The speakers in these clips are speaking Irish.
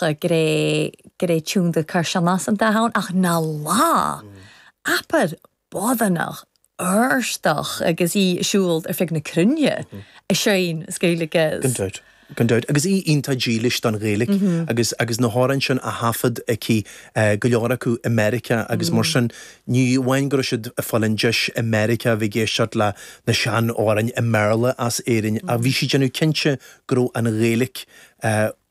go raibh, go raibh tiúin de Kirshannás an dath ann, ach na lá! Apair bodhánach, urstach, agus í ag siúl ar fud na cruinne, a Sheáin, is Gaeilge as. Gan dabht, gan dabht. Agus í iontach dílis don Ghaeilge, agus, agus na hamhráin sin a thaifead aici, go leor acu i Meiriceá agus mar sin, ní amháin go raibh siad ag fáil an deis i Meiriceá a bheith ag éisteacht le na sean-amhráin i mBéarla as Éirinn, ach bhí sí déanamh cinnte go raibh an Ghaeilge,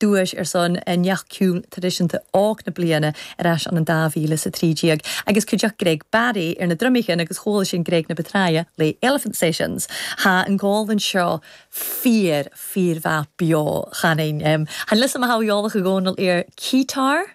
Duais ar son neach ciúin traidisiúnta óg na bliana ar ais ann in dá mhíle is a trí déag agus cuideoidh Greg Barry ar na drumaí sin agus chuala sin Greg na Betraie le Elephant Sessions. Tá an gol anseo fíor, fíor-mhaith beo. Chan liom sa mo shamhail eolach i gcónaí ar keytar.